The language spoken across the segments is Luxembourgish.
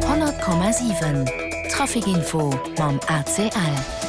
100,7 Trafic Info mam ACL.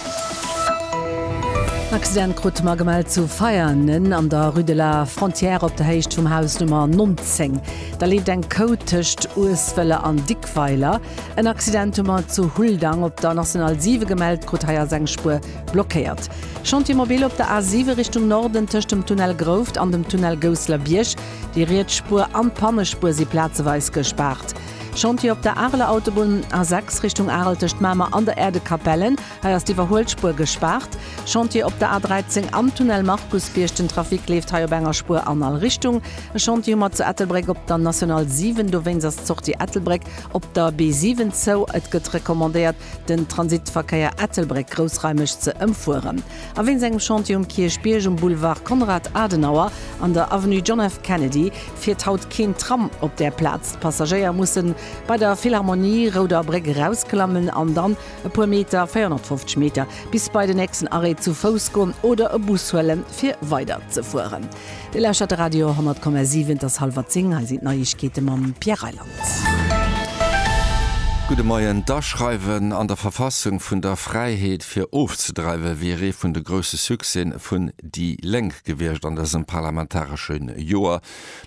Accident krute mer gemellt zu Veianen an der Rue de la Frontière op der Héicht vum Haus Nummer 19. Da leeft eng Kouh tëscht Ueswëller an Dickweiler. En Accident hu mer zu Huldang op der National 7 gemellt krut, hei ass eng Spuer blockéiert. Chantier mobile op der A7 Richtung Norden tëscht dem Tunnel Grouft an dem Tunnel Gousseler Bierg. Déi riets Spuer an d'Pannespuer si plazeweis gespaart. Chantier op der Areler Autobunn, A6 Richtung Arel tëscht Mamer an der Erdekapelle, hei ass d'Iwwerhuelspuer gespaart. Chantier op der A13 am Tunnel Markusbierg, den Trafic leeft hei op enger Spuer an all Richtung. E Chantier hu mer zu Ettelbréck op der National 7, dowéinst ass d'Sortie Ettelbréck op der B7 zou. Et gëtt recommandéiert den Transitverkéier Ettelbréck groussraimeg ze ëmfueren a wéinst engem Chantier um Kierchbierg, um Boulevard Konrad Adenauer an der Avenue John F. Kennedy fiert haut keen Tram op där Plaz. D'Passagéier mussen bei der Philharmonie, Rouder Bréck, erausklammen an dann e puer Meter, 450 Meter, bis bei den nächsten Arrêt zu Fouss goen oder e Bus huelen, fir weiderzefueren. Dir lauschtert de Radio 10,7, et ass hallwer 10, hei sinn d'Neiegkeete mam Pierre Reyland. Gudde Moien, D'Aschreiwen an der Verfassung vun der Fräiheet fir ofzedreiwe wier ee vun de grousse Succèsen vun déi Lénk gewiescht an dësem parlamentaresche Joer.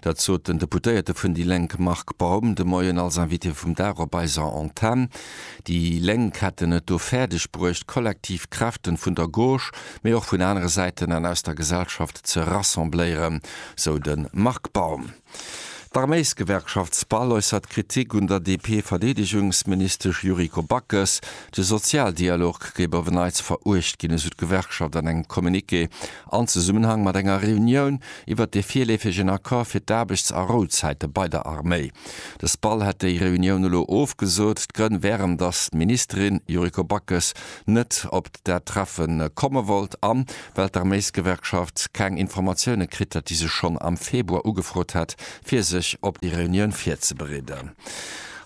Dat sot den Deputéierte vun déi Lénk Marc Baum de Moien als Invité vum Dag op eiser Antenn. Déi Lénk hätten et do fäerdeg bruecht, kollektiv Kräften vun der Gauche, mee och vun anere Säiten an aus der Gesellschaft, ze rassembléieren, sou de Marc Baum. D'Arméisgewerkschaft SPAL äussert Kritik un der DP-Verdeedegungsministesch Yuriko Backes. De Sozialdialog géif op en Neits veruecht ginn, esou d'Gewerkschaft an engem Communiqué an Zesummenhang mat enger Reunioun iwwert dee virleefegen Accord fir d'Aarbechts a Rouzäite bei der Arméi. De SPAL hätt déi Reunioun elo ofgesot. D'Grënn wären, datt d'Ministerin Yuriko Backes net op dat Treffe komme wollt an, well d'Arméisgewerkschaft keng Informatioune kritt hätt, déi se schonn am Februar ugefrot hätt, fir sech op déi Reunioun virzebereeden.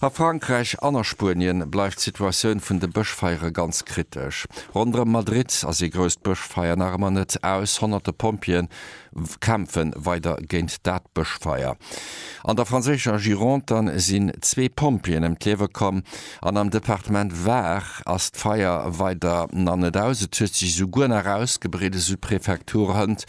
A Frankräich an a Spuenien bleift d'Situatioun vun de Bëschfeiere ganz kritesch. Ronderëm Madrid ass ee grousst Bëschfeier nach ëmmer net aus. Honnerte Pompjeeë kämpfe weider géint dat Bëschfeier. An der franséischer Gironde sinn zwee Pompjeeën ëm d'Liewe komm an am Departement Var ass d'Feier weider nach net aus. Et huet sech esouguer nach ausgebreet, esou d'Prefektur Hënt.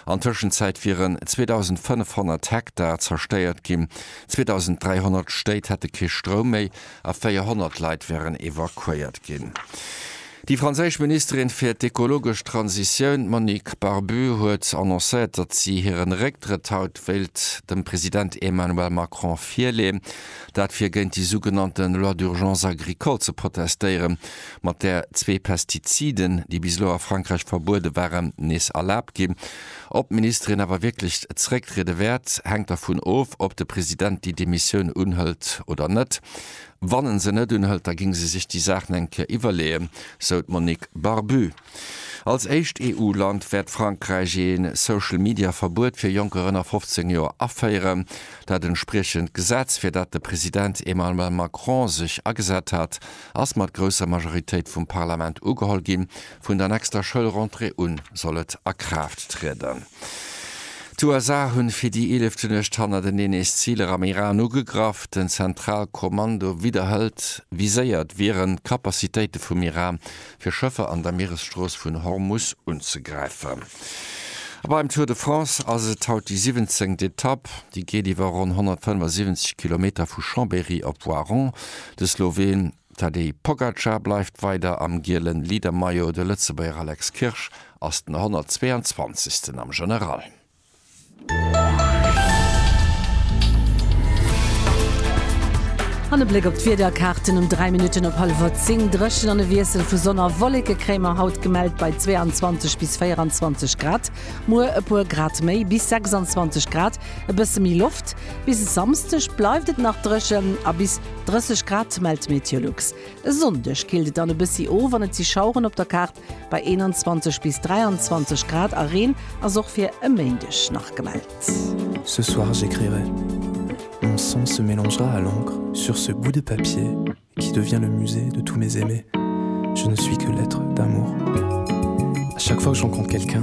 An Tëschenzäit wieren 2.500 Hektar zerstéiert ginn, 2.300 Stéit hätte kee Stroum méi a 400 Leit wären evakuéiert ginn. Déi franséisch Ministerin fir d'ekologesch Transitioun, d'Monique Barbue, huet annoncéiert, datt si hiren Récktrëtt haut wéilt dem President Emmanuel Macron virleeën. Dat fir géint déi sougenannte Loi d'urgence agricole ze protestéieren, mat där zwee Pestiziden, déi bis elo a Frankräich verbuede waren, nees erlaabt ginn. Ob d'Ministerin awer wierklech zerécktriede wäert, hänkt dervun of, ob de President déi Demissioun unhëlt oder net. Wann en se net unhëlt, da géing se sech déi Saach nach eng Kéier iwwerleeën, sou d'Monique Barbu. Als éischt EU-Land wäert Frankräich ee Social-Media-Verbuet fir Jonker ënner 15 Joer aféieren. Dat entspriechend Gesetz, fir dat de President Emmanuel Macron sech agesat hat, ass mat grousser Majoritéit vum Parlament ugeholl ginn. Vun der nächster Schoulrentrée un soll et a Kraaft trieden. D'USA hunn fir déi eelefte Nuecht hannerteneen nees Ziler am Iran ugegraff. Den Zentralkommando widderhëlt, viséiert wieren d'Capacitéite vum Iran, fir Schëffer an der Mieresstrooss vun Hormus unzegräifen. A beim Tour de France ass et haut déi siwwenzéngt Etapp. Déi geet iwwer ronn 175 Kilometer vu Chambéry op Voiron. De Sloween Tadej Pogacar bleift weider am gielen Leadermaillot, de Lëtzebuerger Alex Kirsch ass den 122. am General. An e Bléck op d'Wiederkaarten, Um 3 Minutten op hallwer 10 dréchen an e Wiessel vu Sonn a Wolleke kréie mer haut, gemellt bei 22 bis 24 Grad. Muer e puer Grad méi, bis 26 Grad, e bësse méi Loft. Bis e Samsdeg bleift et nach dréchen a bis. 30 Grad mellt d'Meteolux. E Sonndeg killt et dann e bëssi of an et si Schaueren op der Kaart bei 21 bis 23 Grad a Reen ass och fir e Méindeg nach gemellt. Ce soir j'écrirai, mon sang se mélangera à l'encre sur ce bout de papier qui devient le musée de tous mes aimés, je ne suis que lettre d'amour, à chaque fois que je rencontre quelqu'un,